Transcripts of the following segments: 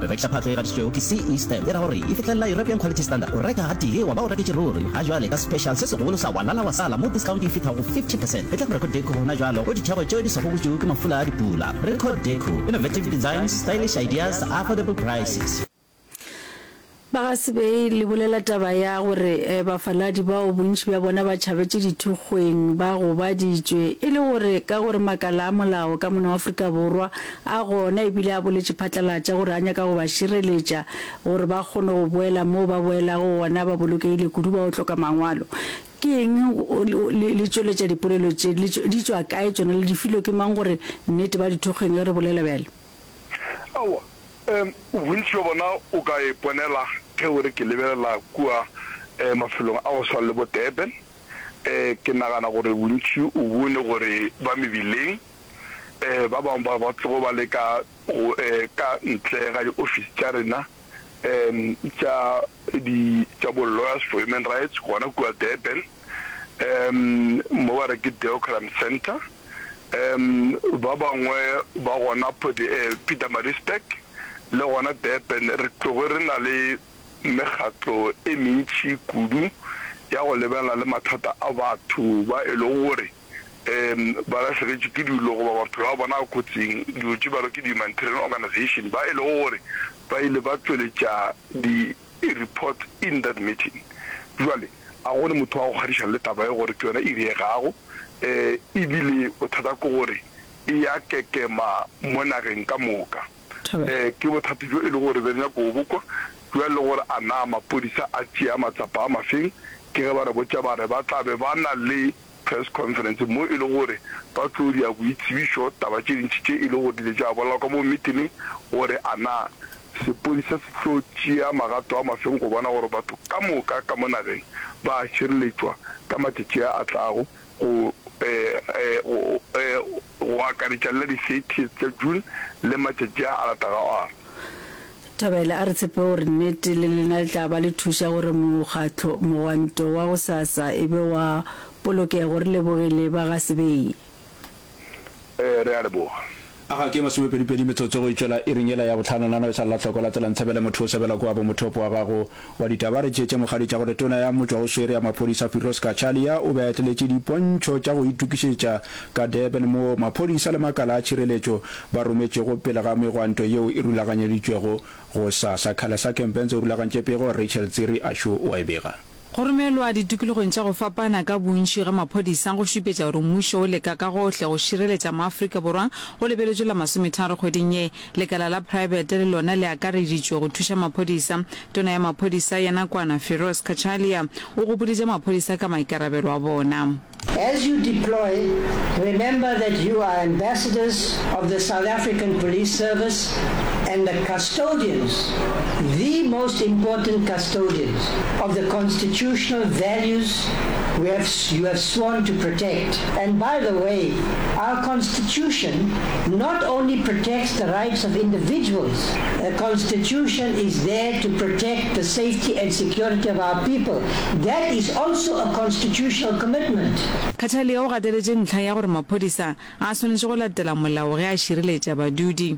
Go rekiša phatlo e gatišitšwego ke CE Stamp e ra gore e fihlelela European Quality Standard. O reka gatee wa ba o reketše ruri. Ga jwale ka special se segolo sa Walala wa sala mo discount e fihla go 50 percent. Etla go Record Deco gona jwalo go ditheko tšeo di swago butšu ke mafula a dipula. Record Deco, innovative designs, stylish ideas, affordable prices. Ba ga Sebei le bolela taba ya gore bafaladi bao bontši bja bona ba tšhabetše dithokgweng ba gobaditšwe e le gore ka gore makala a molao ka mona wa Afrika Borwa A gona e bile a boletše phatlalatša gore a nyaka go ba šireletša gore ba kgone go boela moo ba boelago gona ba bolokegile kudu ba yo hloka mangwalo. Ke eng le le tšweletša dipolelo tše? Le di tšwa kae tšona? Le di filwe ke mang gore nnete ba di thokgeng ge re bolela bjalo? Aowa, bontši bja bona o ka e ponela ge o re ke lebelela kua mafelong a go swana le bo Durban. Ke nagana gore bontši o bone gore ba mebileng. ba bangwe ba ba tlogo ba le ka go ka ntle ga diofisi tša rena tša di tša bo Lawyers for Human Rights gona kua Durban, mo ba re ke Deocram Centre. Ba bangwe ba gona Pietermaritzburg le gona Durban re tlogo re na le mekgatlo e mentši kudu ya go lebelana le mathata a batho ba e lego gore um ba lahleketšwe ke dilo goba maphelo a bona a kotsing, dilo tše bjalo ke di-humanitarian organisation ba e lego gore ba ile ba tšweletša di-report in that meeting. Bjale a go ne motho wa go kgadišana le taba ye gore ke yona e diregago, um e bile bothata ke gore e ya kekema mo nageng ka moka. Um ke bothata bjo e lego gore be re nyaka go bo kwa. Bjale le gore a na maphodisa a tšea matsapa a mafeng, ke ge ba re botša ba re ba tla be ba na le press conference, mo e lego gore ba tlo dia boitsebišo, taba tše ntši tše e lego gore di ile tša bolelwa ka moo mmitineng, gore a na sepodisa se tlo tšea magato a mafeng go bona gore batho ka moka ka mo nageng ba a šireletšwa ka matšatši a a tlago go, go, go, go, go, go akaretša le la di 30th tša June le matšatši a a latago a. Thabela a re tshepe gore nnete le lena le tla ba le thuša gore mokgatlo mogwanto wa gosasa e be wa polokego. Re lebogile ba ga Sebei. Ee, re a leboga. A ga ke masomepedipedi metsotso go e tšwela iring yela ya bohlano, nano e sa lla hloko, latela Ntshabele motho o sebela kua bo mothopo wa gago, Wa ditaba re tšeetše mogadi tša gore tona ya motšwa o swere ya maphodisa Firoz Cachalia o be a etleletše dipontšho tša go itukišetša ka Durban moo maphodisa le makala a tšhireletšo ba rometšego pele ga megwanto yeo e rulaganyeditšwego go sasa. Khalesa Kempense o rulagantše pego, Rachel Tsiri a xo o a e bega. Go romelwa ditokologong tša go fapana ka bontši ga maphodisa go šupetša gore mmušo o leka ka gohle go šireletša maAfrika Borwa go lebeletšwe la masometharo kgweding ye. Lekala la praebete le lona le akareditšwe go thuša maphodisa. Tona ya maphodisa ya nakwana, Firoz Cachalia, o gopoditše maphodisa ka maikarabelo a bona. As you deploy, remember that you are ambassadors of the South African Police Service and the custodians, the most important custodians, of the constitutional values we have, you have sworn to protect. And by the way, our Constitution. Constitution not only protects the rights of individuals, a Constitution is there to protect the safety and security of our people, that is also a constitutional commitment. Khataliya o gateletše ntlha ya gore maphodisa a swanetše go latela molao ge a šireletša badudi.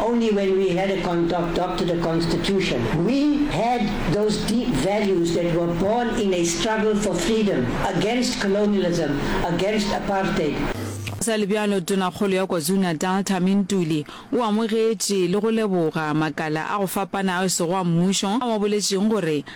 Only when we had a contoadopted a constitution, we had those deep values that were born in a struggle for freedom, against colonialism, against apartheid. Go sa le bjalo, Tonakgolo ya KwaZulu-Natal, Thami Ntuli, o amogetše le go leboga makala a go fapana ao sego a mmušo a mo boletšeng gore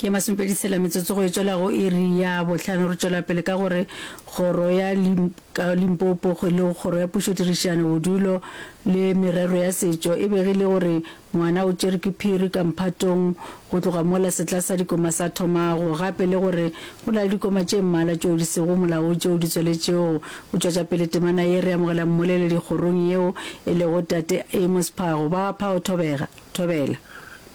Ke masomepedi tshela metsotso go e tšwela go iri ya bohlano. Re tšwela pele ka gore kgoro ya Limpopo go le kgoro ya pušo tirišano bodulo le merero ya setšo e begile gore ngwana o tšere ke phiri ka mphatong go tloga mola setla sa dikoma sa thomago gape le gore go na le dikoma tše mmala tšeo di sego molao tšeo di tsweletšego go tšwetša pele temana ye re amogela mmoleledi kgorong yeo e lego tate Amos Phago. Ba Phago Thobega, Thobela.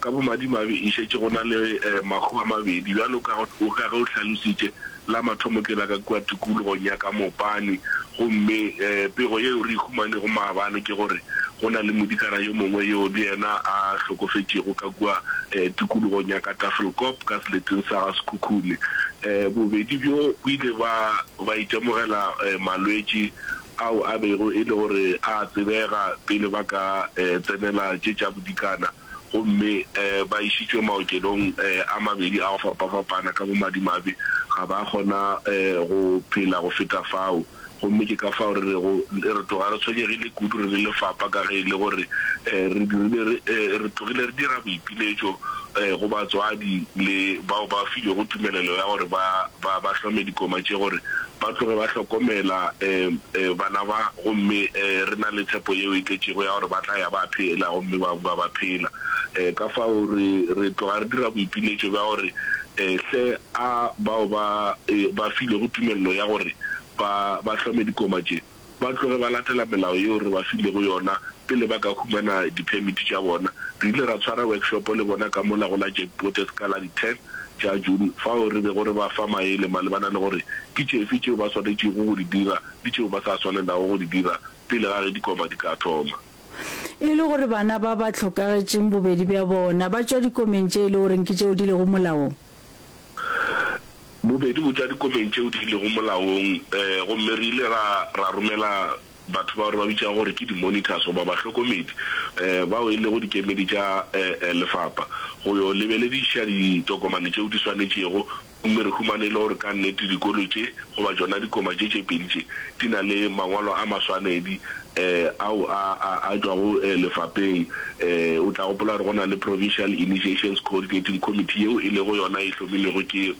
Ka bomadimabe e šetše go na le mahu a mabedi, bjalo ka ge o hlalositše. La mathomo ke la ka kua tikologong ya ka Mopane, gomme pego yeo re e humanego maabane ke gore go na le modikana yo mongwe yoo le yena a hlokofetšego ka kua tikologong ya ka Tafelkop, ka seleteng sa ga Sekhukhune. Bobedi bjo bo ile ba ba itemogela malwetši ao a bego e le gore a a tsebega pele ba ka tsenela tše tša bodikana. gomme ba išitšwe maokelong a mabedi a go fapafapana ka bomadimabe. Ga ba a kgona go phela go feta fao, gomme ke ka fao re rego re tloga re tshwenyegile kudu re le lefapa ka ge e le gore re dirile re tlogile re dira boipiletšo go batswadi le bao ba filwego tumelelo ya gore ba ba hlome dikoma tše gore ba tloge ba hlokomela bana ba, gomme re na le tshepo yeo e tletšego ya gore ba tla ya ba phela gomme ba bua ba phela. Ka fao re, re tloga re dira boipiletšo bja gore, Hle, a bao ba, ba filwego tumelelo ya gore ba, ba hlome dikoma tše, ba tloge ba latela melao yeo re ba filego yona pele ba ka humana diphemiti tša bona. Re ile ra tshwara wekshopo le bona ka mola go la Jack Botez ka la di 10 tša June fao re bego re ba fa maele malebana le gore ke tšefe tšeo ba swanetšego go di dira le tšeo ba sa swanelago go di dira pele ga ge dikoma di ka thoma. E le gore bana ba ba hlokagetšeng bobedi bja bona ba tšwa dikomeng tše e le goreng ke tšeo di lego molaong, Bobedi botša dikopeng tšeo di lego molaong, gomme re ile ra, ra romela batho bao re ba bitšago gore ke di-monitors goba bahlokomedi, bao e lego dikemedi tša lefapha, go yo lebelediša ditokomane tšeo di swanetšego, gomme re humane e le gore ka nnete dikolo tše, goba tšona dikoma tše tše pedi tše, di na le mangwalo a maswanedi. ao a a tšwago lefapeng. O tla gopola gore go na le Provincial Initiations Coordinating Committee yeo e lego yona e hlomilwego ke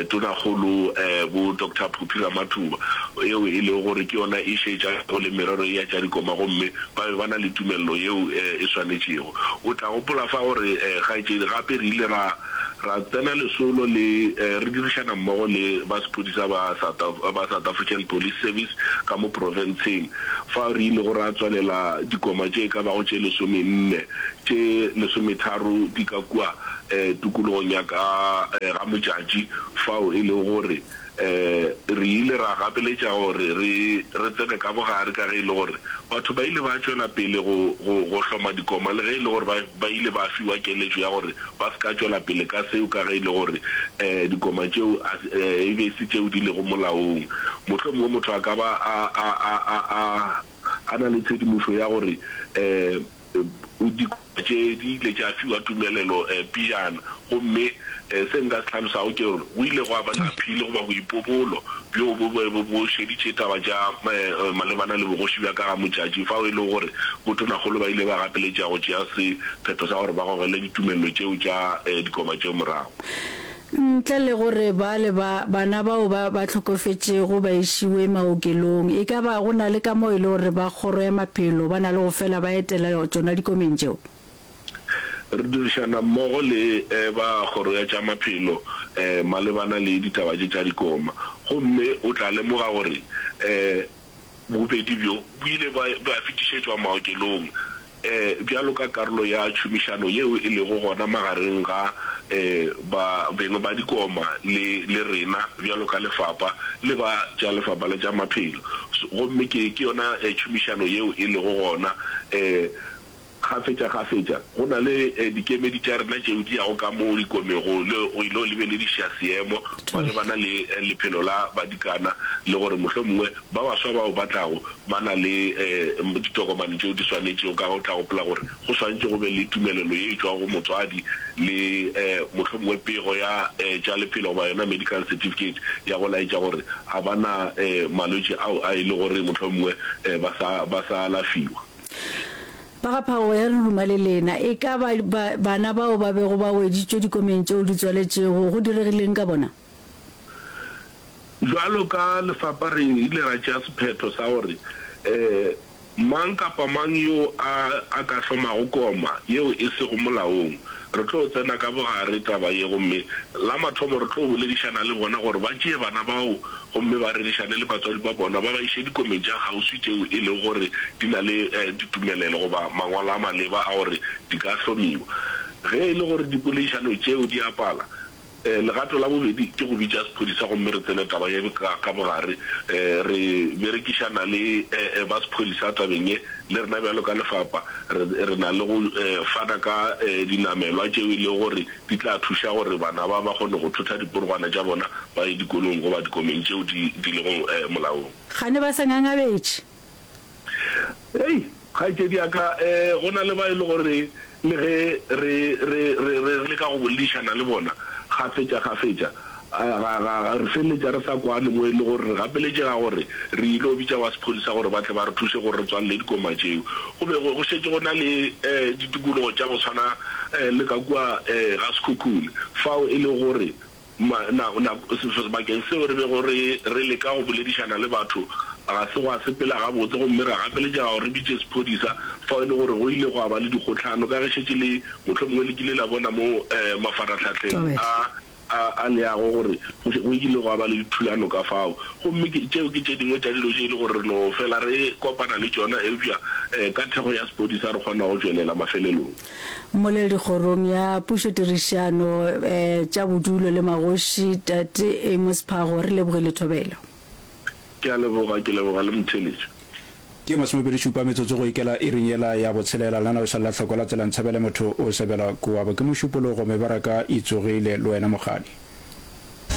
Tonakgolo bo Doctor Phophi Ramathuba yeo e lego gore ke yona e šetšago le merero ye ya tša dikoma gomme ba be ba na le tumelelo yeo e swanetšego. O tla gopola fa gore kgaetšedi gape re ile ra ra tsena lesolo le re dirišana mmogo le ba sephodisa ba ba South African Police Service ka mo profenseng fao re ilego ra tswalela dikoma tše e ka bago tše lesomenne tše lesometharo di ka kua tokologong ya ka ga Mojatši fao e lego gore re ile ra gapeletša gore re re tsene ka bogare ka ge e le gore batho ba ile ba tšwela pele go go hloma dikoma le ge e le gore ba ba ile ba fiwa keletšo ya gore ba se ka tšwela pele ka seo ka ge e le gore dikoma tšeo e be e se tšeo di lego molaong. Mohlomongwe motho a ka ba a a a a a na le tshedimošo ya gore Dikoša tše di ile tša fiwa tumelelo pejana, gomme se nka se hlalosago ke gore go ile gwa ba le aphili goba boipobolo bjoo bo bego bo šeditše taba tša malebana le bogoši bja ka ga Motšatši, fao e lego gore botonakgolo ba ile ba gapeletša go tšea sephetho sa gore ba gogele ditumelelo tšeo tša dikoba tšeo morago. Ntle le gore baale ba bana bao ba ba hlokofetšego ba išiwe maokelong, e ka ba go na le ka mo e le gore ba Kgoro ya Maphelo ba na le go fela ba etela tšona dikomeng tšeo? Re dirišana mmogo le ba Kgoro ya tša Maphelo malebana le ditaba tše tša dikoma, gomme o tla lemoga gore Bobedi bjo bo ile ba ba fetišetšwa maokelong bjalo ka karolo ya tšhomišano yeo e lego gona magareng ga ba beng ba dikoma le le rena bjalo ka lefapa le ba tša lefapa la tša maphelo. Gomme ke ke yona tšhomišano yeo e lego gona Kgafetšakgafetša go na le dikemedi tša rena tšeo di yago ka mo ikomego le go ilo lebelediša seemo malebana le lephelo la badikana le gore mohlomongwe ba baswa bao ba tlago ba na le ditokomane tšeo di swanetšego. Ka ge o tla gopola gore go swantšwe go be le tumelelo ye e tšwago go motswadi le mohlomongwe pego ya tša lephelo goba yona medical certificate ya go laetša gore a ba na malwetši ao a e le gore mohlomongwe ba sa alafiwa. Ba ga Phagogo ya Leruma le lena, e ka ba, ba bana bao ba bego ba weditšwe dikomeng tšeo di tswaletšego, go diregileng ka bona? Bjalo ka lefapa re ile ra tšea sephetho sa gore mang kapa mang yoo a, a ka hlomago koma yeo e sego molaong, Re tlo tsena ka bogare taba ye gomme la mathomo re tlo boledišana le bona gore ba tšee bana bao gomme ba rerišane le batswadi ba bona ba ba iše dikomeng tša kgauswi tšeo e lego gore di na le ditumelelo goba mangwalo a maleba a gore di ka hlomiwa. Ge e le gore dipoleišano tšeo di a pala, Legato la bobedi ke go bitša sephodisa gomme re tsene taba ye ka bogare. Re berekišana le ba sephodisa tabeng ye. Le rena bjalo ka lefapa re na le go fana ka dinamelwa tšeo e lego gore di tla thuša gore bana ba ba kgone go thotha diporogwana tša bona ba ye dikolong goba dikomeng tšeo di lego molaong. Kgane ba se ngangabetše Hei, kgaetšedi ya ka, go na le ba e le gore le ge re, re, re, re leka go boledišana le bona kgafetša kgafetša, ga, ga, ga re feleletša re sa kwane, mo e le gore re gapeletšega gore re yilo bitša ba sephodisa gore ba tle ba re thuše gore re tswalele dikoma tšeo. Go be go, go šetše go na le, ditikologo tša go swana le ka kua, ga Sekhukhune, fao e lego gore Ma, na, na, sebakeng seo re bego re, re leka go boledišana le batho, ga se gwa sepela gabotse, gomme ra gapeletšega gore re bitše sephodisa, fao e le gore go ile gwa ba le dikgohlano, ka ge šetše le, mohlomongwe le kile la bona mo eh, mafarahlahleng a, a, a leago, gore go, go ile gwa ba le dithulano ka fao. Gomme ke, tšeo ke tše dingwe tša dilo tše e le gore re no fela re kopana le tšona, eupša eh, ka thekgo ya sephodisa re kgona go tšwelela mafelelong. Mmolele dikgorong ya pušotirišano tša bodulo le magoši, Tate Amos Phago. Re lebogile thobelo. Ke a leboga, ke leboga le motheletši. Ke masomepedi šupa metsotso go ikela iring yela ya botshelela. Lena o sa lla hloko la tsela Ntshabele motho o sebela kuabo. Ke mošupologo mebaraka itsogile le wena mokgadi.